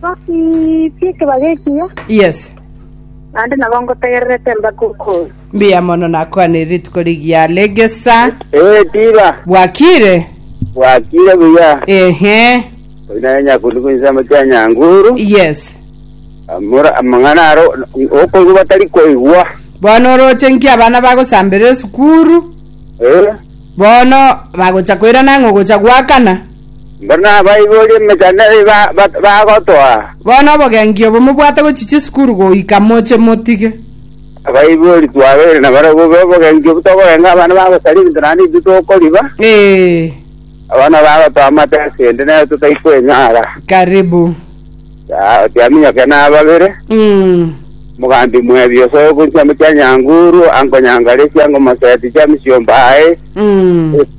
Ngotibie ekebago ekiya, Yes. naende nabo ngotegererete mpaka okoira. Mbuya mono nakwanire rituko rigiya regesa. Eh, tiba. Bwakire? Bwakire buya. Ehe. Oyinare nyakundi kunsemo kia nyanguru. Yes. Amora amang'ana aro okoigwa batari koigwa. Bono oroche nki abana bagosambera esukuru? Eh. Bono bagocha koirana ng'o gocha gwakana? Mboro nabaiborie emechando eyio bagotoa. Bono obogenki obo mobwate gochia chisukuru goika moche motige. Abaibori twabeire nabarabwo bobogenki obwo tokogenga abana bagosaria ebinto naende intwe tokoriba. Abana bagotoa amate ase ende nere totai kwenyara. Karibu. Yaya oti aminyoke na ababere. Mogambi mwebia osoe gochia mochia Nyanguru, ango Nyangalisia, ango Moseti chia misiomba aye.